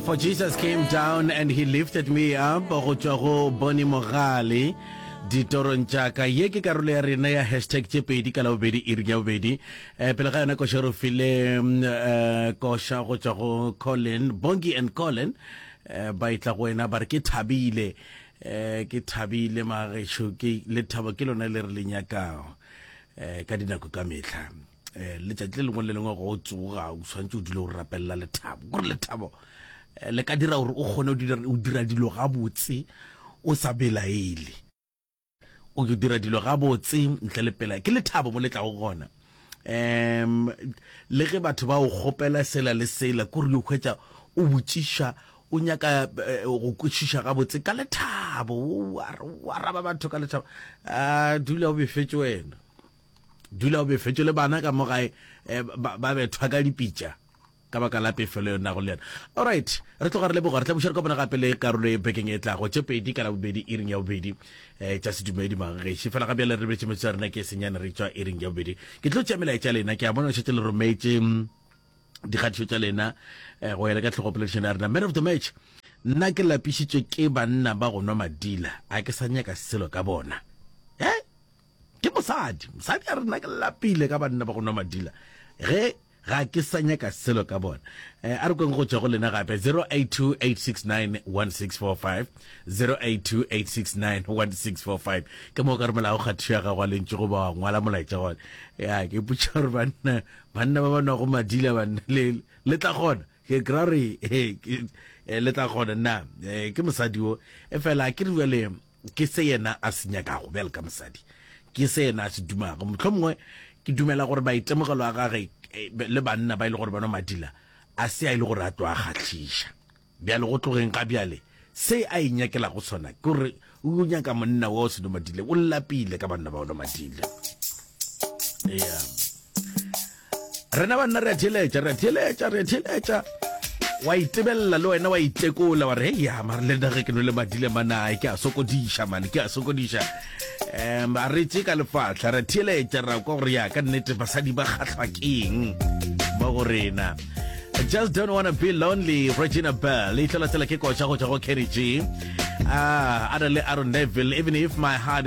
For Jesus came down and he lifted me up go tswa go Boni Mogale ditorong tša ka ye ke karolo ya rena ya hashtag tše pedi ka labobedi iri ya bobedi um pele ga yona koša re file um eh, koša go tswa go colin bongi and colin um ba e tla go wena ba re ke thabile um ke thabile magešo ke lethabo ke lona le re le nyakago um ka dinako ka metlha eh, letšatši le lengwe le lengwe go o tsoga o tshwanetse o dule o rapelela lethabo gore lethabo eh, le ka dira gore o kgone o dira dilo gabotse o sa belaele o dira dilo gabotse ntle le pela ke lethabo mo le tlago gona um le ge batho ba o kgopela sela le sela kore yo kgwetsa o botšiša o nyaka eh, go kwešiša gabotse ka lethabo o araba batho ka lethabo a ah, dula o befetse wena Dula o befetšwe le bana ka mo gae eh, ba bethwa ka dipitša ka baka la pefelo yona go le yena allright re tloga re leboga re tlabuša re kopana gape le karolo e bekeng e tlago tše pedi ka labobedi e ring ya bobedi um tša sedumedi magagešo fela ga bjale re betse metso ya rena ke senyane re tswa e ring ya bobedi ke tlo tšea melaetša lena ke a bona šetse le rometse mm, dikgatišo tša lena um go yela ka tlhogo poledišano ya rena man of the match nna ke lapišitswe ke banna ba go nwa madila a ke sa nyaka selo ka bona e Ke mosadi. Mosadi a re, Nna ke lapile ka banna ba go nwa madila ge ga ke sa nyaka selo ka bona. A re kweng go tšwa go lena gape, 0828691645, 0828691645. Ke moo o ka romelago kgathišo ya gago ya lentšu goba wa ngwala molaetša gona. Ya, ke ipotša gore banna, banna ba ba nwago madila banna, le, le tla kgona? Ke kry-a gore, he, ke, le tla kgona na? Ke mosadi wo. Efela akere bjale. Ke se yena a se nyakago, bjale ka mosadi. Ke se yena a se dumago. Mohlomongwe ke dumela gore maitemogelo a gage le banna ba e le gore ba nwa madila a se a e le gore a tlo a kgahliša. Bjale go tlogeng ga bjale, se a inyakelago sona ke gore o yo nyaka monna wa o se nwe madile. O lapile ka banna ba o nwa madile. Ea. rena banna re a theeletša re a theeletša re a theeletša wa itebelela le wena wa itekola wa re hey ya mare le dage ke no le madile manae ke a sokodiša mane ke a sokodiša um a re tse ka lefatlha re theeletša ra kwa gore ya ka nnete basadi ba kgatlhwa keng ba go rena I just don't wanna be lonely Regina Bell e tlola tsela ke koša go tšwa go Kenny G ah, Adele Aaron Neville even if my heart